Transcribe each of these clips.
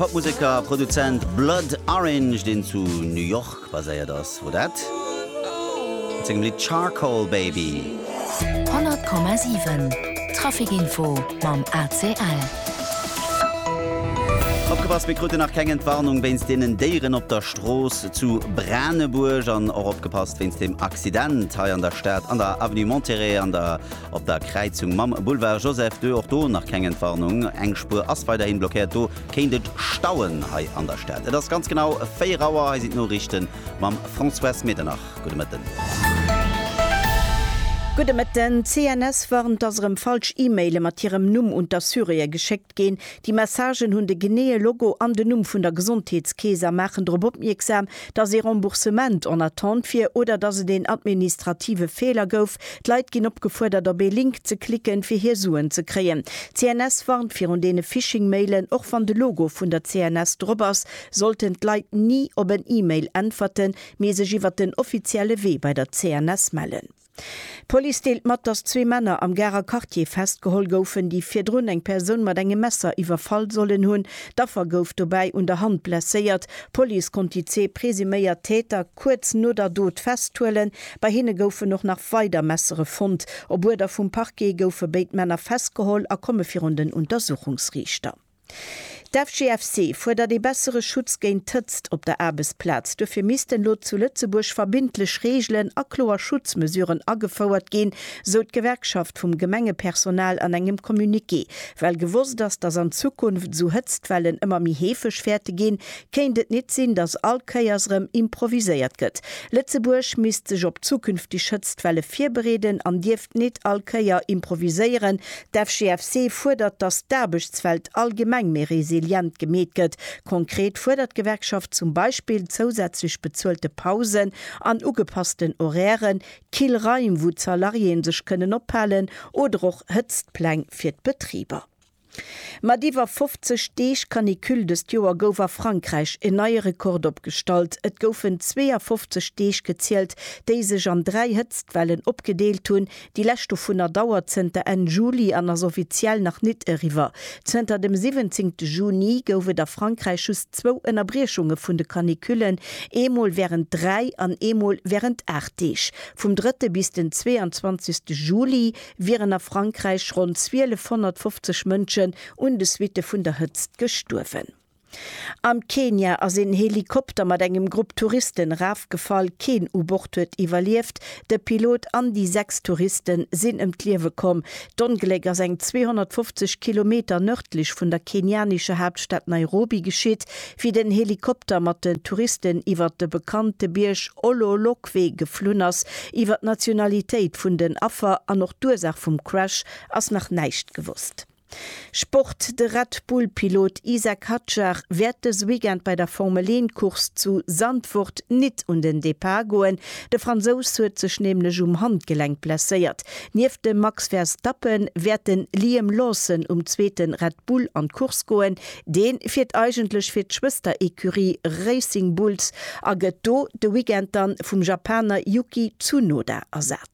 Popmuseker a Produzent Blood Orange, deen zu New York baséiert ass, wor dat mat sengem Lidd Charcoal Baby. 100,7 Trafic Info mam ACL. Opgepasst, mir kruten nach keng Entwarnung wéinst deenen Déieren op der Strooss zu Branebuerg. An och opgepasst wéinst dem Accident hei an der Stad an der Avenue Monterey an der. Op der Kräizung mam Boulevard Joseph ii, och do nach keng Entwarnung, eng Spuer ass weiderhin blockéiert, do kéint et stauen hei an der Stad. Et ass ganz genau 4 Auer, hei sinn d'Noriichte mam Françoise Medernach. Gudde Mëtten. Gudde Mëtten. D'CNS warnt, dass erëm falsch E-Maile mat hirem Numm un d'Assuréë geschéckt. ginn. Déi Messagen hunn de geneeë Logo an den Numm vun der Gesondheetskeess a maachen drop opmierksam, dass ee Remboursement en attente wier oder dass et een administrative Feeler gouf. D'Leit ginn opgefuerdert, op ee Link ze klicken, fir hir Suen ze kréien. D'CNS warnt virun deene Phishing-Mailen. Och wann de Logo vun der CNS drop ass, sollten d'Leit ni op en E-Mail äntwerten, mee sech iwwert den offizielle Wee bei der CNS mellen. D'Police deelt mat, dass zwee Männer am Garer Quartier festgeholl goufen, déi virdrun eng Persoun mat engem Messer iwwerfall sollen hunn. D'Affer gouf dobäi un der Hand blesséiert. D'Police konnt déi zwee presuméiert Täter kuerz no der Dot festhuelen. Bei hinne goufen och nach weider Messere fonnt. Op Uerder vum Parquet goufe béid Männer festgeholl a komme virun den Untersuchungsriichter. D'FGFC fuerdert ee bessere Schutz géint d'Hëtzt op der Aarbechtsplaz. Duerfir missten elo zu Lëtzebuerg verbindlech Reegelen a kloer Schutzmesuren agefouert ginn, sou d'Gewerkschaft vum Gemengepersonal an engem Communiqué. Well gewosst ass, datt an Zukunft esou Hëtztwellen ëmmer méi heefeg wäerte ginn, kéint et nit sinn, datt all Kéiers erëm improviséiert gëtt. Lëtzebuerg misst sech op zukünfteg Hëtztwelle virbereeden an dierft nit all Kéier improviséieren, D'FGFC fuerdert, datt d'Aarbechtswelt allgemeng méi resilient gemeet gëtt. Konkret fuerdert d'Gewerkschaft zum Beispill zousätzlech bezuelte Pausen an ugepassten Horairen, kill Raim, wou d'Salariéeë sech kënnen ophalen, oder och Hëtztpläng fir d'Betriber. Mat iwwer 50 Deeg Canicule dëst Joer gouf a Frankräich en neie Rekord opgestallt. Et goufen 52 Deeg gezielt, déi sech an dräi Hëtztwellen opgedeelt hunn, Déi lescht dovunner dauert zënter Enn Juli an ass offiziell nach nit eriwwer. Zënter dem 17 Juni gouf et a Frankräich just zwou Ënnerbriechunge vun de Canicullen, eemol wärend dräi an eemol wärend aacht Deeg. Vum drëtte bis den 22 Juli wieren a Frankräich ronn 1250 Mënschen un de Suitte vun der Hëtzt gestuerwen. Am Kenia ass een Helikopter mat engem Grupp Touristen erafgefall. Keen u Bord huet iwwerlieft. De Pilot an déi sechs Touriste sinn ëm d'Liewe komm. D'Ongléck ass eng 250 Kilometer nërdlech vun der kenianescher Haaptstad Nairobi geschitt, wéi den Helikopter mat den Touristen iwwert de bekannte Bierg Ololokwe geflunn ass. Iwwer d'Nationalitéit vun den Affer an och d'Ursaach vum Crash ass nach näischt gewosst. Sport, De Red Bull-Pilot Isack Hadjar wäert dës Weekend bei der Formel-Een-Course zu Zandvoort nit un den Depart goen. De Fransous huet sech nämlech um Handgelenk blesséiert. Nieft dem Max Verstappen wäert den Liam Lawson um zweete Red Bull an d'Course goen. Dee fiert eigentlech fir d'Schwëster-Ecurie Racing Bulls a gëtt do de Weekend dann vum Japaner Yuki Tsunoda ersat.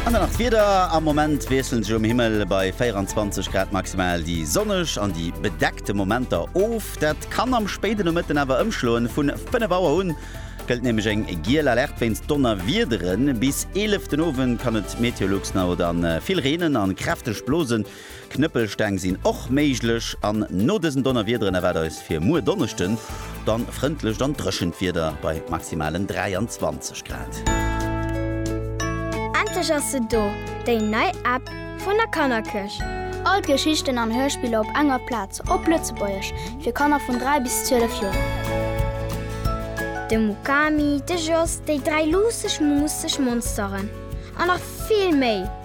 An dann nach d'Wieder, Am Moment wiesselen sech um Himmel bei 24 Grad maximal déi sonneg an déi bedeckte Momenter of. Dat kann am spéiden Nomëtten awer ëmschloen, vun 5 Auer un gëllt nämlech eng giel Alerte wéinst Donnerwiederen. Bis 11 den Owend kann et meteolux no dann vill reenen an kräfteg blosen. Knëppelsteng sinn och méiglech an no dësen Donnerwiederen erwaart eis fir muer Donneschden dann frëndlecht an dréchent Wieder bei maximalen 23 Grad. Endlech ass se do, déi nei App vun der Kannerkirch! All d'Geschichten an Hörspiller op enger Plaz, op Lëtzebuergesch, fir Kanner vun 3 bis 12 Joer. De Mukami, de Jos, déi dräi luusseg, muusseg Monsteren an nach vill méi!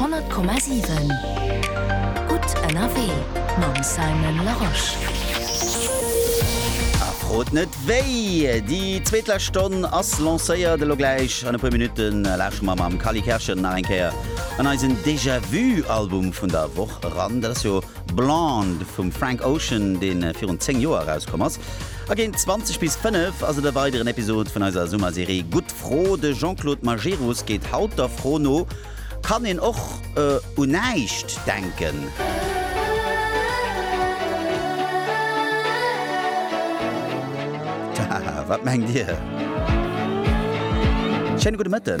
Honnert Komma siwen, gutt ënnerwee mam Simon Larosche. A frot net wéi! Déi zweetlescht Stonn ass lancéiert. Elo gläich an e puer Minutte lausche mer mam Kally Kerschel nach eng Kéier an eisen Déjà-vu-Album vun der Woch eran. Dat ass jo. Blonde vum Frank Ocean, dee virun 10 Joer erauskomm ass. A géint 20 bis 5 ass et e weideren Episod vun eiser Summerserie Gutt Fro. De Jean-Claude Majerus geet haut der Fro no, Kann een och u näischt denken? Tja, wat mengt Dir? Schéine gudde Mëtten.